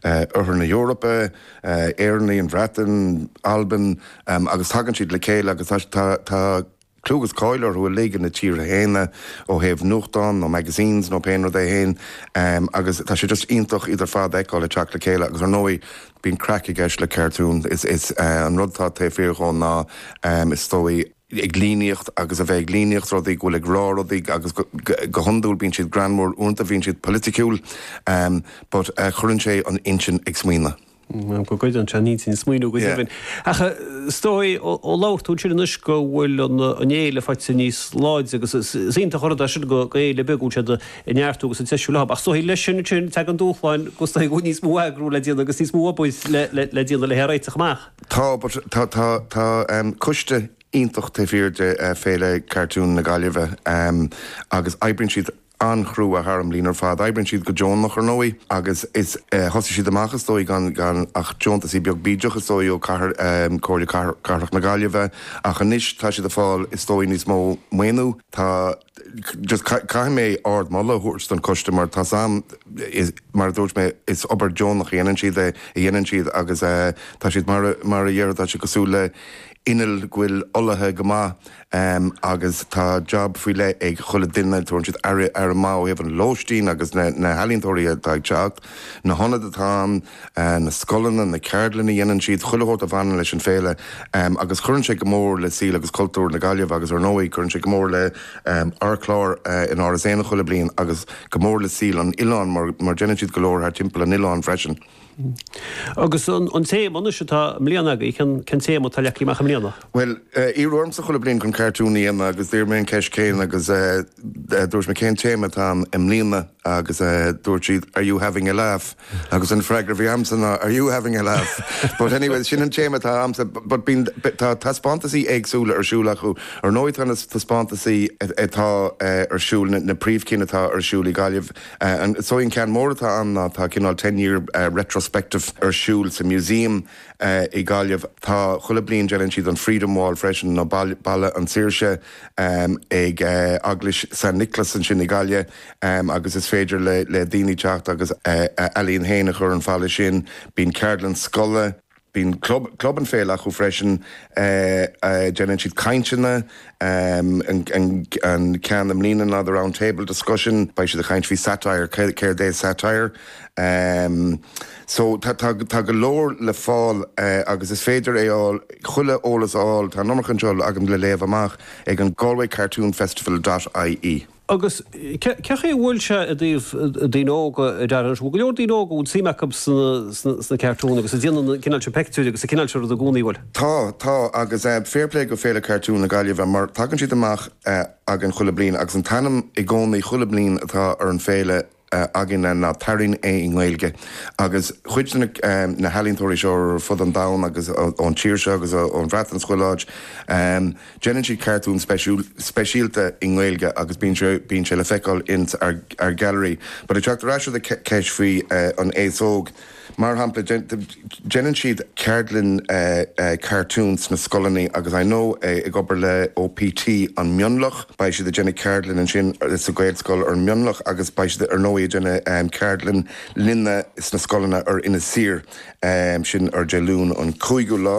Oirthear na hEorpa, Éireannaigh, an Bhreatain, Albain, agus tagann siad le chéile agus tá clú agus cáil orthu uilig ina dtíortha féin ó thaobh nuachtán nó magazines nó pé rud é féin agus tá sé just iontach iad ar fad a fheiceáil ag teacht le chéile agus ar ndóigh bíonn craic i gceist le cartoon, is an rud atá taobh thiar dhó ná is dóigh. ag líníocht agus a bheith ag líníocht rudaí, go bhfuil ag rá rudaí agus go hiondúil bíonn siad greannmhar, uaireanta bíonn siad polaitiúil but cuireann sé an intinn ag smaoineamh. Bhuel, go gcuireann sé an intinn ag smaoineamh go deimhin. Ach is dóigh ó labhair tú ansin anois go bhfuil an fhéile ag fáil níos láidre agus is iontach an rud é sin do fhéile beag go bhfuil siad ag neartú agus ag treisiú ach is dóigh leis sin ansin tagann dúshláin agus is dóigh go bhfuil níos mó eagrú le déanamh agus níos mó obair le déanamh le í a réiteach amach. Tá, but tá, tá, tá coiste iontach taobh thiar de Féile Cartoon na Gaillimhe agus oibríonn siad an-chrua thar an mbliain ar fad. Oibríonn siad go deonach ar ndóigh agus is, thosaigh siad amach is dóigh gan, gan ach deontasaí beag bídeach is dóigh ó Comhair, Comhairle Cathrach na Gaillimhe ach anois tá siad ag fáil is dóigh níos mó maoiniú. Tá. just caithfidh mé ardmholadh a thabhairt don coiste mar tá siad mar a dúirt mé is obair deonach a dhéanann siad é a dhéanann siad agus eh tá siad mar mar a déarfá tá siad cosúil le inneall go bhfuil olaithe go maith em agus tá jab faoi leith ag chuile duine tugann siad aire aire mhaith ó thaobh an lóistín agus na na healaíontóirí atá ag teacht na hionaid atá ann na scoileanna, na ceardlanna a dhéanann siad, chuile shórt a bhaineann leis an Féile agus cuireann sé go mór le saol agus cultúr na Gaillimhe agus ar ndóigh cuireann sé go mór le ár gclár in Áras Éanna chuile bliain agus go mór le saol an oileáin mar déanann siad go leor thar timpeall an oileáin freisin. Agus an téama anois atá i mbliana agaibh, cén téama atá leagtha amach i mbliana? Bhuel, iarradh ormsa chuile bliain chun cartún a dhéanamh agus d'iarr mé an cheist chéanna agus dúirt mé cén téama atá ann i mbliana? agus dúirt siad are you having a laugh agus an freagra a bhí agamsa ná are you having a laugh? But anyway, sin an téama atá ann so but bíonn, tá taispeántasaí éagsúla ar siúl acu, ar ndóigh tá na taispeántasaí atá ar siúl, na príomhchinn atá ar siúl i Gaillimh, an, is dóigh an ceann mór atá ann ná tá cineál ten year retrospective ar siúl sa Museum i Gaillimh, tá, chuile bliain déanann siad an Freedom Wall freisin nó Balla an tSaoirse ag Eaglais San Nioclás ansin i nGaillimh. agus is féidir le daoine teacht agus a n-ealaín féin a chur ar an mballa sin. Bíonn ceardlann scoile, bíonn club, club an fhéile acu freisin, déanann siad cainteanna, an ceann i mbliana ná The Round Table Discussion, beidh siad ag caint faoi satire, céard é satire. So tá go leor le fáil agus is féidir é fháil, chuile eolas a fháil, tá an iomarca anseo agam le léamh amach, ag an Galway Cartoon Festival dot ie. Agus cé chaoi a bhfuil sé i dtaobh daoine óga, a Darren? An bhfuil go leor daoine óga a bhfuil suim acu sna cartúin agus a dhéanann an cineál seo peictiúirí agus an cineál seo rud i gcónaí, an bhfuil? Tá, tá. Agus fair play go Féile Cartún na Gaillimhe mar tagann siad amach againn chuile bliain agus an t-ainm i gcónaí chuile bliain atá ar an Féile, againne ná tarraing é i nGaeilge agus cuid de na healaíontóirí seo ar fud an domhain agus ón tír seo agus ón Bhreatain 's chuile áit déanann siad cartúin speisialta i nGaeilge agus bíonn sé le feiceáil ins ár ngailearaí. But ag teacht ar ais do do ceist faoi an aos óg, Mar shampla, déanann siad ceardlann cartún sna scoileanna agus I know ag obair le OPT i Mionlach, beidh siad ag déanamh ceardlann ansin sa Ghaelscoil i Mionlach agus beidh siad ar ndóigh ag déanamh ceardlann linne sna scoileanna ar Inis Oírr, sin ar Dé Luain an cúigiú lá.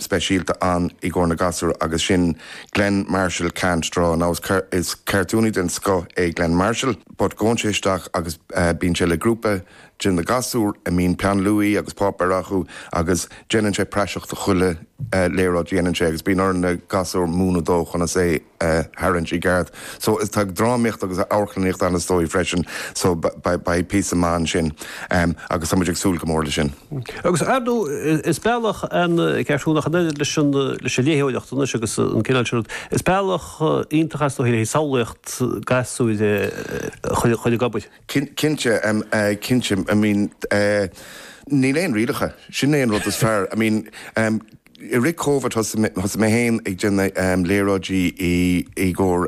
speisialta ann i gcomhair na ngasúr agus sin Glen Marshall Can't Draw. Now is is cartúnaí den scoth é Glen Marshall but gabhann sé isteach agus bíonn sé le grúpa de na gasúir a mbíonn peann luaí agus páipéar acu agus déanann sé praiseach de chuile léaráid a dhéanann sé agus bíonn ar na gasúir múineadh dó conas é a tharraingt i gceart. So, is, tá drámaíocht agus amharclannaíocht ann is dóigh freisin, so beidh píosa maith ansin agus tá muid ag súil go mór leis sin. Agus ar ndóigh, is bealach an cartún ach an oiread leis an léitheoireacht anois agus an cineál sin rud, is bealach iontach is dóigh le samhlaíocht gasúir a chur ag obair. Cinnte, cinnte, I mean, níl aon rialacha, sin é an rud is fearr, I mean, I rith Covid thosaigh mé féin ag déanamh léaráidí i gcomhair